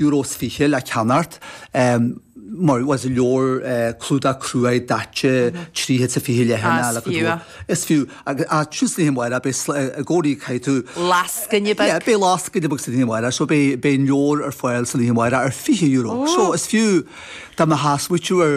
Euro is 20 le ceannacht mar bhfuil go leor clúdach cruaidh daite trí chéad is 20 leathanaigh le go. Is fiú. Ach thíos ag an lainseáil, beidh i gcónaí, caithfidh tú. Lascaine beag. Yeah, beidh lascaine beag ag an lainseáil, so beidh an leabhar ar fáil ag an lainseáil ar 20 euro. So is fiú, dá mbeadh smaoitiú ar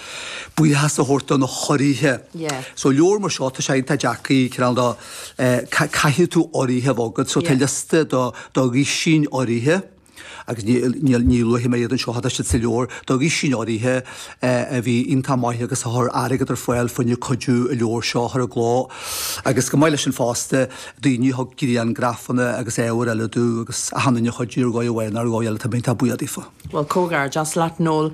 buíochas a thabhairt do na hurraithe. Yeah. So leabhar mar seo, tá sé iontach deacair, cineál de, eh, caithfidh tú urraithe a bheith agat. So tá liosta do, do dhoisín urraithe, agus níl, níl, ní luafaidh mé iad anseo, tá siad sa leabhar, do dhoisín urraithe, eh, a bhí iontach maith agus a chuir airgead ar fáil fá choinne cuidiú an leabhar seo a chur i gcló. Agus chomh maith leis sin fosta, daoine a thug grianghrafanna agus ábhar eile dúinn agus a tháinig a chuidiú ar dhóigh amháin nó ar dhóigh eile, tá mé iontach buíoch daofa. Bhuel, comhghairdeas leat, Noel.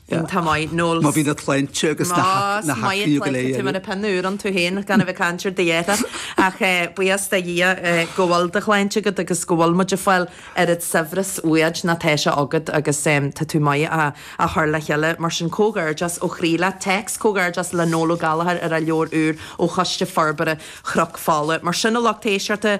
Bhí Tá maith Noel. Má bhí na clainte agus na h-na Más maith an h-aclaíoga claidhte tú muna pinn úr ann tú féin gan a bheith ag caint ar do dheireadh. Ach buíochas do Dhia go bhfuil do shláinte agat agus go bhfuil muid ag fáil oiread saibhris uaid má tá sé agat agus tá tú maith á chur le chéile. Mar sin comhghairdeas ó chroí leat. Téacs comhghairdeas le Noel Ó Gallchóir ar a leabhar úr ó Choiste Forbartha Chnoc Fola. Mar sin a lucht éisteachta,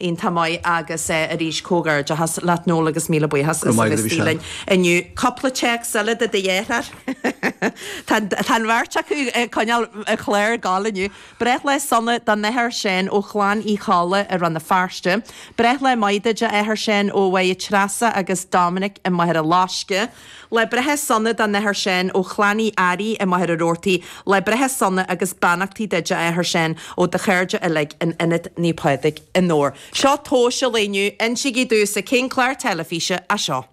iontach maith agus arís comhgairdeachas leat Noel agus míle buíochas as a bheith istigh linn inniu. Cupla téacs eile do do dheartháir. Tá an bheirt acu ag coinneáil an chláir ag goil inniu. Breith lá sona don Athair Seán ó chlann Uí Cholla i Rann na Feirste. Breith lá maith duit a Athair Seán ó Mháire Treasa agus Dominic i Machaire Loisce. Lá breithe sona don Athair Seán, ó chlann Uí Fhearraigh i Machaire Rabhartaigh, Lá breithe sona agus beannachtaí duit, a Athair Seán, ó do chairde uilig in Ionad Naomh Pádraig i nDobhar. Seo tomhas an lae inniu, insigí domhsa cén clár teilifíse é seo.